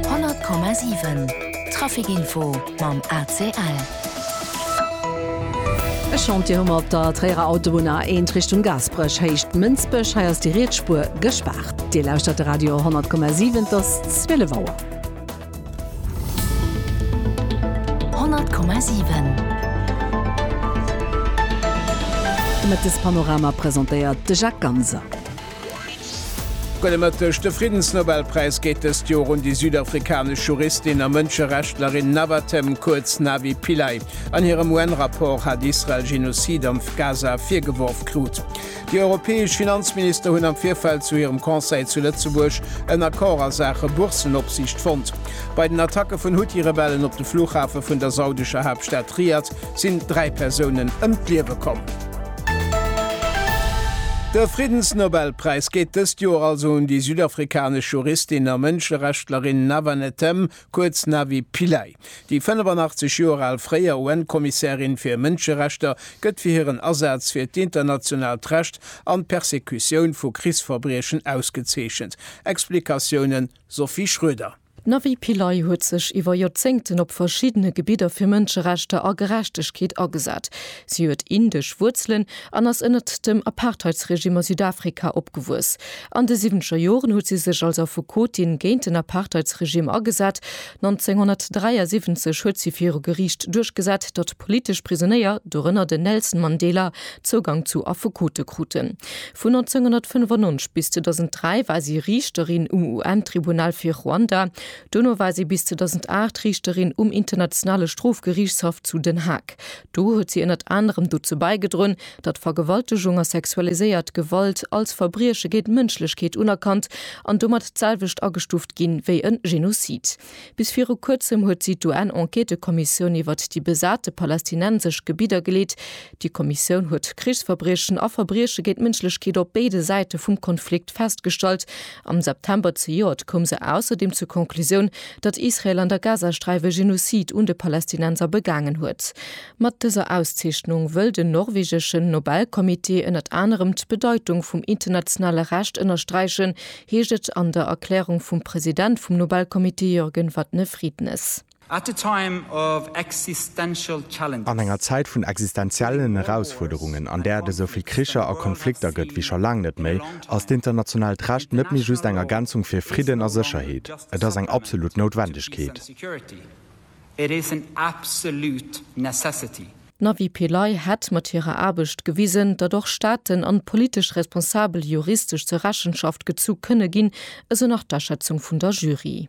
100,7 Traficinfo mam ACL. E Chantier hu mer op der Tréierer Autobunn, A1 Richtung Gaasperech, Héicht Mënsbech. Hei ass déi riets Spuer gespaart. Dir lauschtert de Radio 100,7, et ass 12 Auer. 100,7 De Mëttespanorama presentéiert de Jacques Ganser. Gudde Mëtteg, De Friddensnobelpräis geet dëst Joer un déi südafrikanesch Juristin a Mënscherechtlerin Navathem, kuerz Navi Pillay. An hirem UN-Rapport hat Israel Genozid am Gaza virgeworf krut. Déi europäesch Finanzminister hunn am Virfeld zu hirem Conseil zu Lëtzebuerg en Accord a Saache Boursenopsiicht fonnt. Bei den Attacke vun Huthi-Rebellen op de Flughafe vun der saudescher Haaptstad Riad sinn dräi Persounen ëm d'Liewe komm. De Friddensnobelpräis geet dëst Joer also un déi südafrikanesch Juristin a Mënscherechtlerin Navanethem, kuerz Navi Pillay. Déi 85 Joer al fréier UN-Kommissärin fir Mënscherechter gëtt fir hiren Asaz fir d'internationaalt Recht an d'Persekutioun vu Krichsverbriechen ausgezeechent. Explikatiounen Sophie Schroeder. D'Navi Pillay huet sech iwwer Joerzéngten op verschiddene Gebidder fir Mënscherechter a Gerechtegkeet agesat. Si huet indesch Wuerzelen an ass ënnert dem Apartheidsregime a Südafrika opgewuess. An de siwwenzeger Joren huet si sech als Affekotin géint den Apartheidsregime agesat. 1973 huet si viru Geriicht duerchgesat, datt politesch Prisonéier, dorënner den Nelson Mandela, Zougang zu Affekote kruten. Vun 1995 bis 2003 war si Riichterin um UN-Tribunal fir Ruanda. Dono war si bis 2008 Riichterin um Internationale Strofgeriichtshaff zu Den Haag. Do huet si ënnert anerem dozou baigedroen, datt Vergewaltegung a sexualiséiert Gewalt als Verbrieche géint d'Mënschlechkeet unerkannt an domat d'selwecht agestuft ginn, wéi e Genozid. Bis viru kuerzem huet si d'UN-Enquêtekommissioun iwwert déi besate palästinensesch Gebidder geleet. Déi Kommissioun huet Krichsverbriechen a Verbrieche géint d'Mënschlechkeet op béide Säite vum Konflikt festgestallt. Am September zejoert koum se ausserdeem zur Conclusioun, datt Israel an der Gazasträif e Genozid un de Palästinenser begaangen huet. Mat dëser Auszeechnung wëll den norwegeschen Nobel-Comité ënnert anerem d'Bedeitung vum internationale Recht ënnersträichen, heescht et an der Erklärung vum President vum Nobelcomité Jürgen Vatne-Friednes. An enger Zäit vun existenziellen Erausfuerderungen, an där et esou vill Kricher a Konflikter gëtt wéi scho laang net méi, ass d'internationaalt Recht net méi just eng Ergänzung fir Fridden a Sécherheet, et ass eng absolut Noutwendegkeet. It is an absolute necessity. D'Navi Pillay hätt mat hirer Aarbecht gewisen, datt och Staaten an politesch Responsabel juristesch zur Rechenschaft gezu kënne ginn, esou nach d'Aschätzung vun der Jury.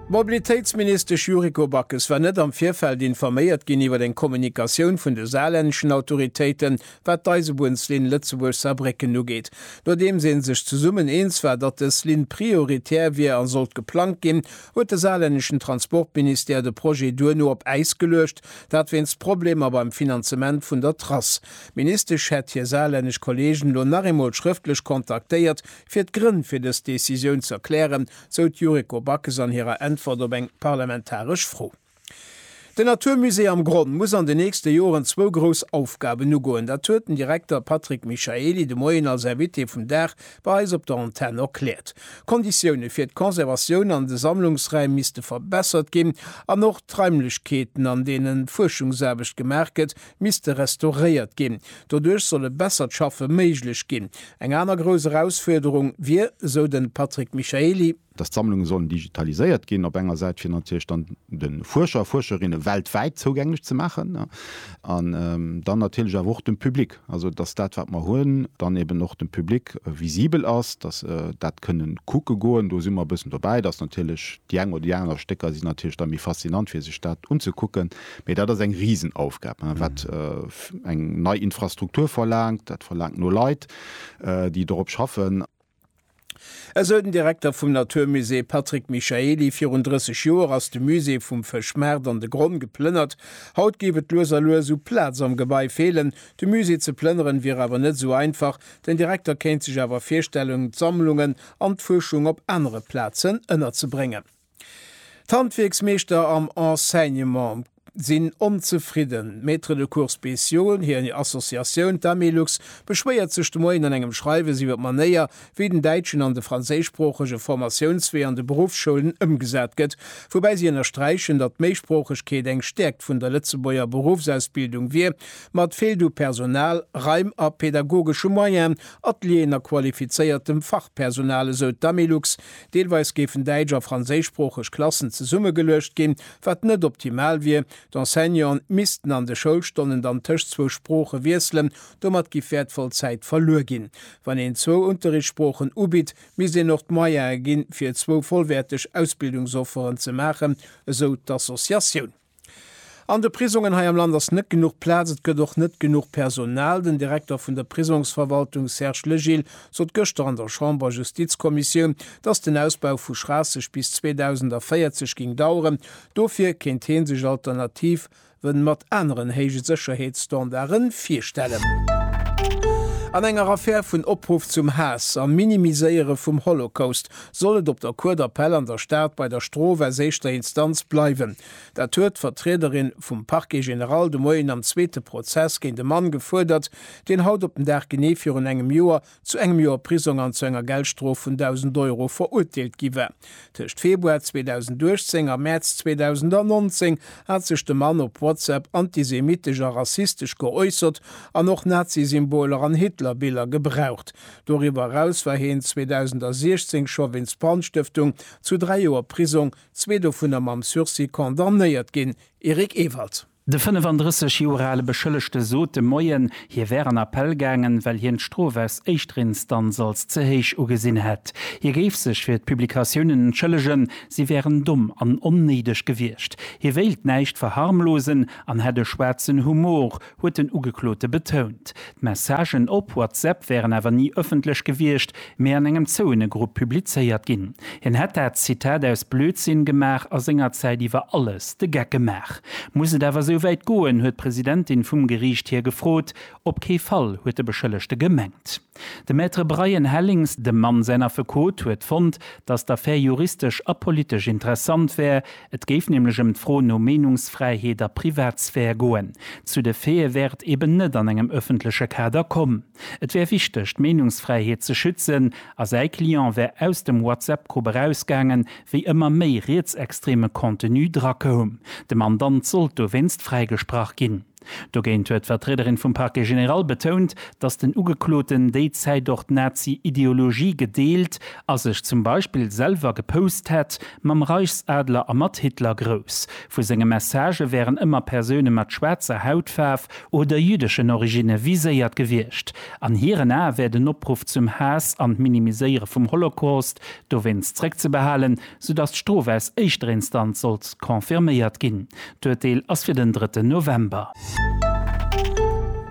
D'Mobilitéitsministesch Yuriko Backes war net am Virfeld informéiert ginn iwwer eng Kommunikatioun vun de saarlännischen Autoritéiten Wat d'Eisebunnsliinn Lëtzebuerg-Saarbrécken ugeet, nodeems ee sech zesummen eens war, datt dës Linn prioritär wier a sollt geplangt ginn, huet de saarlänneschen Transportministère de Projet duerno op Äis geluecht, dat wéinst Problemer beim Finanzement vun der Trass. D'Ministesch hätt hir saarlännesch Kolleegen elo nach eemol schrëftlech kontaktéiert, fir d'Grënn fir dës Decisioun z'erklären, sou d'Yuriko Backes an hirer Äntwert op eng parlamentaresch Fro. Den Natur Musée am Gronn muss an den nächste Joren zwou grouss Aufgaben ugoen. Dat huet den Direkter Patrick Michaely de Moien als Invité vum Dag bei eis op der Antenn erkläert. D'Konditioune fir d'Conservatioun an de Sammlungsräim misste verbessert ginn an och d'Raimlechkeeten, an deenen d'Fuerschungsaarbecht gemaach gëtt, misste restauréiert ginn. Doduerch soll e bessert Schaffe méiglech ginn. Eng aner grouss Erausfuerderung wier, esou de Patrick Michaely, dass d'Sammlunge sollen digitaliséiert ginn, op enger Säit fir natierlech dann de Fuerscher a Fuerscherinne weltwäit zougänglech ze maachen an dann natierlech awer och dem Public, also dass dat wat mer hunn, dann eben och dem Public visibel ass, dass se dat kënne kucke goen. Do si mer e bëssen dobäi, dass natierlech déi eng oder déi aner Stécker sinn natierlech da méi faszinant fir sech dat unzekucken, mee dat ass eng Risenaufgab wat eng nei Infrastruktur verlaangt, dat verlaangt no Leit déi dorop schaffen. Esou den Direkter vum Natur Musée Patrick Michaely. Virun 30 Joer ass de Musée vum Fëschmaart an de Gronn geplënnert. Haut géif et lues a lues u Plaz am Gebai feelen. De Musée ze plënneren wier awer net esou einfach. Den Direkter kéint sech awer virstellen d'Sammlungen an d'Fuerschung op anere Plazen ënnerzebréngen. D'Handwierksmeeschter am Enseignement sinn onzefridden. D'Maîtres de cours spéciaux, hir Associatioun, d'Amilux, beschwéiert sech de Moien an engem Schreiwes iwwer d'Manéier, wéi den däitschen an de franséischsproochege Formatiounswee an de Beruffsschoulen ëmgesat gëtt, woubäi si ënnersträichen, datt d'Méisproochegkeet eng Stäerkt vun der Lëtzebuerger Beruffsausbildung wier, ma et feelt u Personal, Raim a pedagogesche Moyenen, Atelieren a qualifizéiertem Fachpersonal, esou d'Amilux. Deelweis géifen däitsch a franséischsproocheg Klassen zesummegeluecht ginn, wat net optimal wier. D'Enseignanten missten an de Schoulstonnen dann tëscht zwou Sprooche wiesselen. Domat giff wäertvoll Zäit verluer ginn. Wann een zwou Unterrichtssproochen ubitt, misst een och d'Moyene ginn, fir zwou vollwäerteg Ausbildungsofferen ze maachen, esou d'Associatioun. An de Prisongen hei am Land ass net genuch Plaz, et gëtt och net genuch Personal. Den Direkter vun der Prisongsverwaltung Serge Legil sot gëschter an der Chamber Justizkommissioun, datt den Ausbau vu Schraasseg bis 2040 géing daueren. Dofir kéint hee sech Alternative mat aneren héije Sécherheetsstandare virstellen. An enger Affär vun Opruff zum Haass a Minimiséiere vum Holocaust soll et op der Cour d'appel an der Stad bei der Strof aus éischter Instanz bleiwen. Dat huet d'Vertriederin vum Parquet général de Moien am zweete Prozess géint e Mann gefuerdert, deen haut op den Dag genee virun engem Joer zu engem Joer Prisong an zu enger Geldstrof vun 1.000 Euro verurteelt gi war. Tëscht Februar 2018 a Mäerz 2019 hat sech de Mann op WhatsApp antisemitesch a rassistesch geäussert an och Nazi-Symboler an Hitler-Biller gebraucht. Doriwwer eraus war hien 2016 scho wéinst Brandstëftung zu dräi Joer Prisong, zwee dovunner mam Sursis, condamnéiert ginn. Eric Ewald. De 35 Joer ale Beschëllegte sot de Moien, hie wär an Appell gaangen, well hien d'Strof aus éischter Instanz als ze héich ugesinn hätt. Hie géif sech fir d'Publikatiounen entschëllegen, si wären domm an onnéideg gewiescht. Hie wéilt näischt verharmlosen an hätt e schwaarzen Humor, huet den Ugeklote betount. D'Messagen op WhatsApp wären awer ni ëffentlech gewiescht, mee an engem zouene Grupp publizéiert ginn. Hien hätt dat, Zitat, aus Blödsinn gemaach a sengerzäit iwwer alles de Geck gemaach. Muss et awer esouwäit goen, huet d'Presidentin vum Geriicht hie gefrot. Op kee Fall, huet de Beschëllegte gemengt. De Maître Brian Hellings, dem Mann säin Affekot, huet fonnt, datt d'Affär juristesch a politesch interessant wär. Et géif nämlech ëm d'Fro no Meenungsfräiheet a Privatsphär goen. Zu de Faite wär et eben net an engem ëffentleche Kader komm. Et wär wichteg, d'Meenungsfräiheet ze schützen a säi Client wär aus dem WhatsApp-Grupp erausgaangen, wéi ëmmer méi rietsextreme Contenu drakoum. De Mandant sollt dowéinst fräigesprach ginn. Dogéint huet d'Vertriederin vum Parquet général betount, datt den Ugekloten déi Zäit och d'Nazi-Ideologie gedeelt a sech zum Beispill selwer gepoust hätt mam Reichsadler a mat Hitler. Grouss vu senge Messagë wären ëmmer Persoune mat schwaarzer Hautfaarf oder jüddeschen Originne viséiert gewiescht. An hiren Ae wär den Opruff zum Haass an d'Minimiséiere vum Holocaust dowéinst zréckzebehalen, soudass d'Strof aus éischter Instanz sollt confirméiert ginn. D'Urteel ass fir den drëtten November.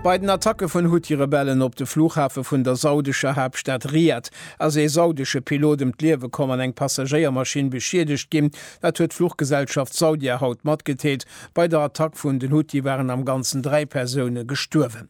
Bei den Attacke vun Huthi-Rebellen op de Flughafe vun der saudescher Haaptstad Riad ass ee saudesche Pilot ëm d'Liewe komm an eng Passagéiermaschinn beschiedegt ginn. Dat huet d'Fluchgesellschaft Saudia haut matgedeelt. Bei der Attack vun den Huthi waren am Ganzen dräi Persoune gestuerwen.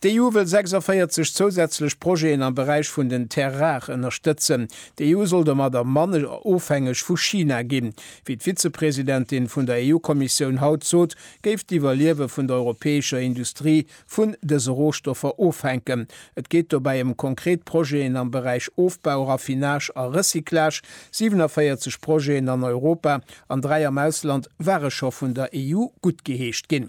D'EU wëll 46 zousätzlech Projeten am Beräich vun den Terres rares ënnerstëtzen. D'EU soll domadder manner ofhängeg vu China ginn. Wéi d'Vizepresidentin vun der EU-Kommissioun haut sot, géif d'Iwwerliewe vun der europäescher Industrie vun dëse Rohstoffer ofhänken. Et geet dobäi ëm konkret Projeten am Beräich Ofbau, Raffinage a Recyclage. 47 Projeten an Europa an dräi am Ausland ware scho vun der EU guttgeheescht ginn.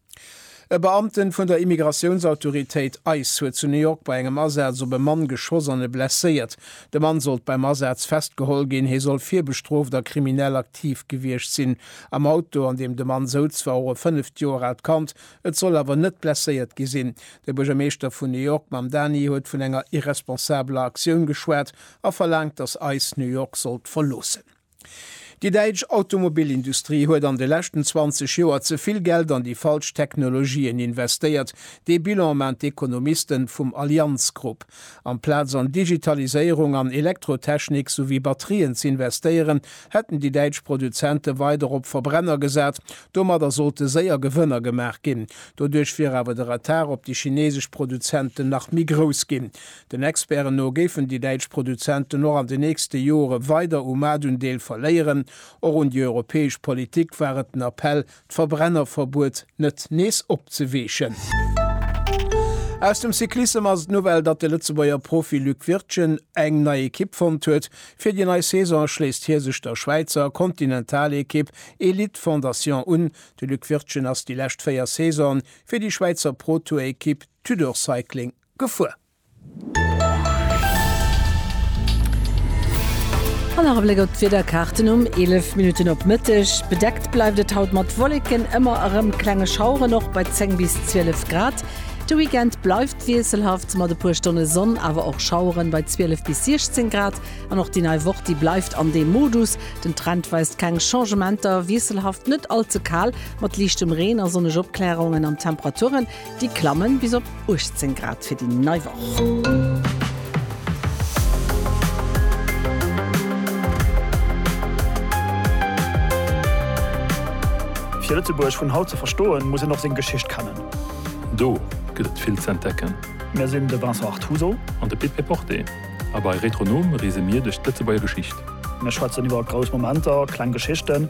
E Beamten vun der Immigratiounsautoritéit ice huet zu New York bei engem Asaz op e Mann geschoss an e blesséiert. De Mann sollt beim Asaz festgeholl ginn. Hie soll virbestrooft a kriminell aktiv gewiescht sinn. Am Auto, an deem de Mann souz, war och e fënneft Joer aalt Kand. Et soll awer net blesséiert gi sinn. De Buergermeeschter vun New York Mamdani huet vun enger irresponsabeler Aktioun geschwat a verlaangt, datt ice New York sollt verloossen. Déi däitsch Automobilindustrie huet an de leschten 20 Joer ze vill Geld an déi falsch Technologien investéiert. Dee Bilan maan d'Ekonomisten vum Allianz Group. Amplaz an Digitaliséierung an Elektrotechnik souwéi Batterien z'investéieren, hätten déi däitsch Produzenten weider op Verbrenner gesaat. Domadder sollte séier Gewënner gemaach ginn. Doduerch wier awer de Retard op déi chinesesch Produzenten nach méi grouss ginn. Den Experten no géifen déi däitsch Produzenten och an den nächste Jore weider u Maartundeel verléieren. Och un déi europäesch Politik war et den Appell, d'Verbrennerverbuet net nees opzeweechen. Aus dem Cyclissem ass et d'Nouvelle, datt de Lëtzebuerger Profi Luc Wirtgen eng nei Ekipp fonnt huet. Fir déi nei Saison schléisst hie sech der Schwäizer Continental-Ekipp Elite Fondation un. De Luc Wirtgen ass déi lescht véier Saisonen fir déi Schwäizer Pro-Tour-Ekipp Tudor Cycling gefuer. An nach e Bléck op d'Wiederkaarten um 11 Minutten op Mëtteg. Bedeckt bleift et haut mat Wolleken, ëmmer erëm klenge Schaueren, och bei 10 bis 12 Grad. De Weekend bleift wiesselhaft mat e puer Stonne Sonn, awer och Schaueren, bei 12 bis 16 Grad. An och déi nei Woch, déi bleift an deem Modus. Den Trend weist keng Changementer, wiesselhaft, net all ze kal, mat liichtem Reen a sonneg Opklärungen an d'Temperaturen Déi klammen bis op 18 Grad fir déi nei Woch. Fir Lëtzebuerg vun haut ze verstoen, muss een och seng Geschicht kennen. Do gëtt et vill z'entdecken. Mir sinn de Vincent Artuso. An de Pit Péporté. A bei Retronom reese mir duerch d'Lëtzebuerger Geschicht. Mir schwätzen iwwer grouss Momenter, kleng Geschichten.